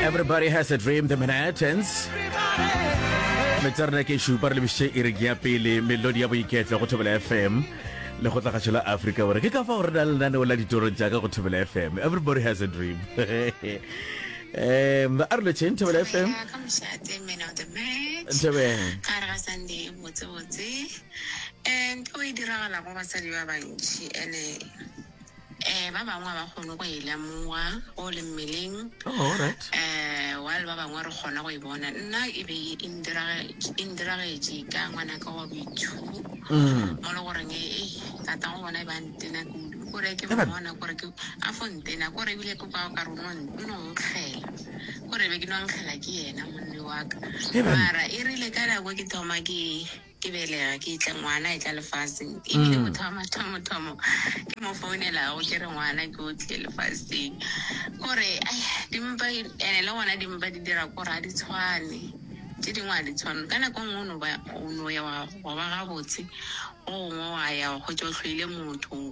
Everybody has a dream, the Manhattans. Metsarna ke shupa re lebishe e re ke ya pele melodi ya boiketlo go thobela FM le go tlagatšho la Africa gore ke ka fa gore na le nane o la ditoro tša ka go thobela FM. Everybody has a dream. um ba arlo chain thobela FM. Nthabeng. ka re ga sunday botsebotse um ke o e diragala go basadi ba bantši ene um ba bangwe ga ba kgone go e lemoga go le mmeleng Oh, all right. um while ba bangwe re kgona go e bona nna e be e ndirage- e ndiragetše ka ngwanaka wa boithubo Mm. mo le goreng e tata go bona e ba ntena kudu kore ke Eban. mmona kore ke a fo ntena kore ebile ke kwao kare o no n- o no nkgela kore be ke no nkgela ke yena monne waka Eban. mara e rile ka nako ke thoma ke ke belega ke itle ngwana e tla lefaseng ebile mm. motho wa mathomothomo ke mo founelago ke re ngwana ke o tle lefaseng kore dimpa ene le gona dimpa di dira kore a di tshwane tse dingwe a di tshwane ka nako nngwe o no ya wa ba gabotse go gongwe wa ya go tsotlhoile motho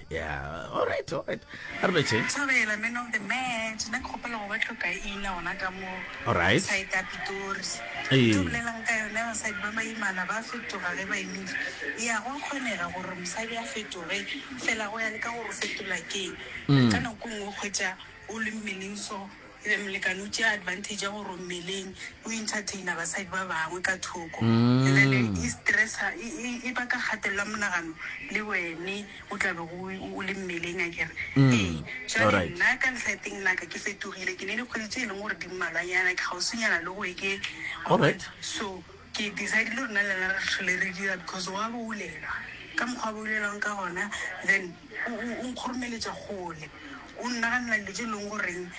Yeah, all right, all right. A re betšhe. Thobela, man of the match. Nna ke kgopela go ba tlhokaina gona ka mo All right. side ya Pitori. Ee. Ke bolelang ka yone basadi ba baimana ba fetoga ge ba imile. Ya go a kgonega gore mosadi a fetoge fela go ya le ka gore o fetola keng. Ka nako nngwe o kgwetša o le mmeleng so Le molekane o tšea advantage ya gore o mmeleng, o entertainer basadi ba bangwe ka thoko. And then e stressa, e, e, e baka kgatelelo ya monagano le wene o tla bego o, o, o le mmeleng a kere. Ee, jwale Alright. nna ka lehlaeteng la ka ke fetogile, ke ne dikgwedi tse e leng gore di mmalwanyana, ke kgauswinyana le go eke. Alright. So ke decidile gore nna le yena re tlhole re dira because wa boulelwa ka mokgwa a boulelwang ka gona then. O, o, o nkhurumeletša kgole. O nnaganela dilo tše e lego goreng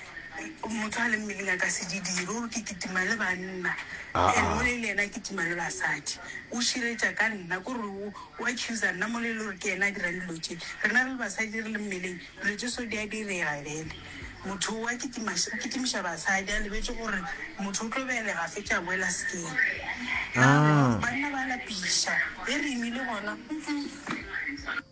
motho a le mmeleng a ka se di dire. O re ke kitima le banna, Aa. and mole e le yena a kitima le basadi. O širetša ka nna, ko re o, o accusa nna mole e le gore ke yena a dirang dilo tše. Rena re le basadi re le mmeleng, dilo tše so di a direga bjale. Motho o a kitima, o kitimiša basadi a lebetše gore motho o tlo belega fetše a boela sekeng. Aa. Banna ba lapiša, e re imile gona, mm-mm.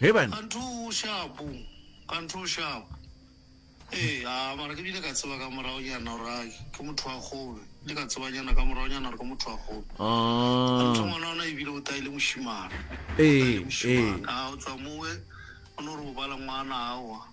Ge bana. Ka ntho o shapo, ka ntho o shapo. Ee, a, mara ke bile ka tseba ka morago nyana gore a ke motho wa kgolo. Ke bile ka tseba nyana ka morago nyana gore ke motho wa kgolo. Ka ntho ngwana ona e bile o taile mošimana. Ee, ee. A, o tswa mowe, o no re o bala ngwana awa.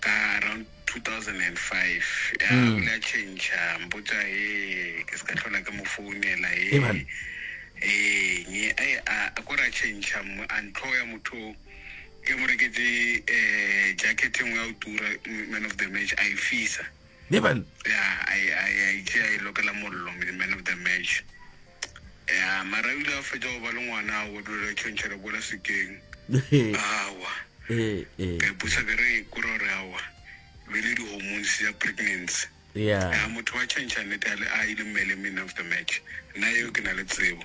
ka around 2005 ya mm. bula change mpotsa e ke se ka tlhola ke mo founela e ee nye a e, a ko ra change a ntlho ya motho ke mo reketse um eh, jacket e nngwe ya o tura man of the match a e fisa ne ban ya a e a e a itse a e lokela mollo me the man of the match ya mara ile a fetsa go ba le ngwana a odulela tšhontšha le bola sekeng awa eh eh ka ipusa ke re kore gore awa e be le di-hormones ya pregnancy ya ya motho wa tšhontšha nnete a le a ile mmele man of the match nna eo ke na le tsebo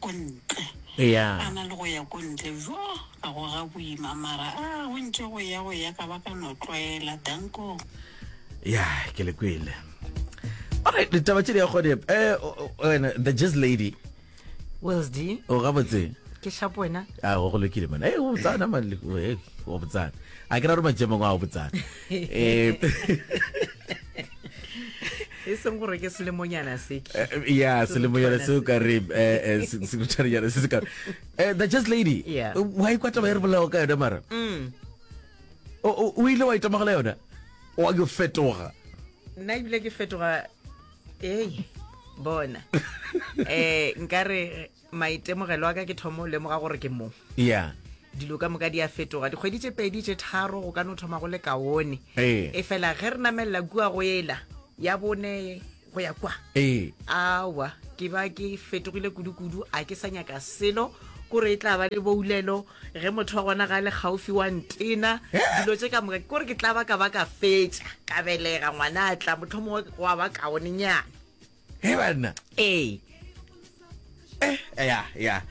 Ko ntle. Eya. A na le go ya ko ntle bjo ga go ga boima mara a go ntše go ya go ya ka ba ka no tlwaela dankong. Ya ke le kwele. All right, ditaba tše di ya gone. Eh wena the jazz lady. Wells D. O ga botse. Ke shapo wena. A go go lokile mona. Eh o tsana mali. Eh o botsana. A ke ra re majemong a o botsana. eh, e seng gore ke selemonyana se ke eh, ya selemonyana se o ka re eh, sekutshwanejana se se ka the just lady wa ikwa taba e re bolago ka yone mara mm. o ile wa itamagela yone wa yo fetoga nna ebile ke fetoga ee bona um nkare maitemogelo a ka ke thomo lemoga gore ke mo ya dilo ka moka di a fetoga dikgwedi tše pedi tše tharo go ka no thoma go le kaone Ee. e fela ge re namelela kua go ela ya bone go ya kwa ee awa ke ba ke fetogile kudu-kudu a ke sa nyaka selo kore e tla ba le boulelo ge motho wa gona ga le gaufi wa ntena dilo tše ka moka kore ke tla ba ka ba ka fetša ka belega ngwana a tla motlho mongwe wa ba kaonenyana he banna ee eh ya ya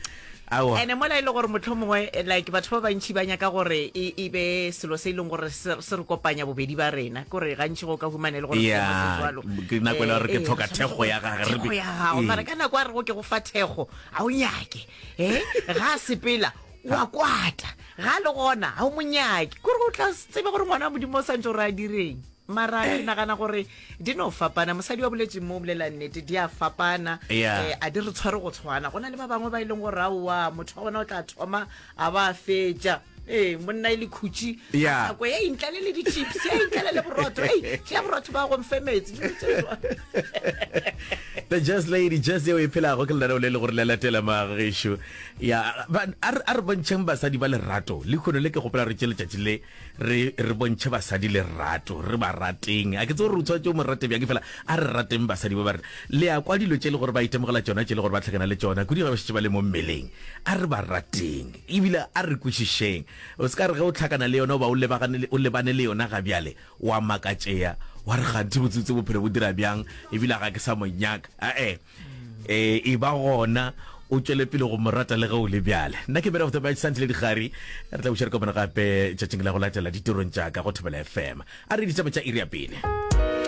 awa ene mola e le gore motlho mongwe eh, like batho ba bantšhi ba nyaka gore e e be selo se e leng gore se se re kopanya bobedi ba rena kore gantši go ka humane e le gore Yeah, seemo se jwalo. ke nako e le gore ke Eh, eh, tlhoka re thekgo ya gage, re thekgo be- ya gago Ee. mara ka nako a rego ke go fa thekgo ga o nyake e ga a sepela wa kwata ga a le gona ga o monyake kore o tla tsebe gore ngwana wa modimo o santse o re a direng mara ke nagana gore di no fapana mosadi wa boletseng mo o bolela nnete di a fapana Yeah. eh, a di re tshware go tshwana go na le ba bangwe ba e leng gore aowa motho wa gona o tla thoma a ba a fetša ee monna e le khutši Yeah. nako e intlale le di-chips e intlale le borotho e tlea borotho ba gomfe metsi dilo tse jwang. the jazz lady jazz yeo e phelago ke lenaneo le le gore le latela magešu ya ba- a re a re bontšheng basadi ba lerato le kgono le ke gopela re tše letšatši le re re bontšhe basadi lerato re ba rateng a ke tse gore o tshwanetse o mo rate bjang fela a re rateng basadi ba ba rena le ya kwa dilo tše le gore ba itemogela tšona tše le gore ba tlhakana le tšona kudi ga ba šetse ba le mo mmeleng a re ba rateng ebile a re kwešišeng o se ka re ge o tlhakana le yona o ba o lebagane o lebane le yona ga bjale wa makatšea wa re ganthe botsebotse bophelo bo dira bjang ebile ga ke sa mo nyaka ae e ba gona o tšwele pele go mo rata le ge o le bjale nna ke berego tsamaya santile digari re tla bušere kopana gape tšatšing la go latela ditirong tša ka go thobela fm a re ditaba tša iri ya pele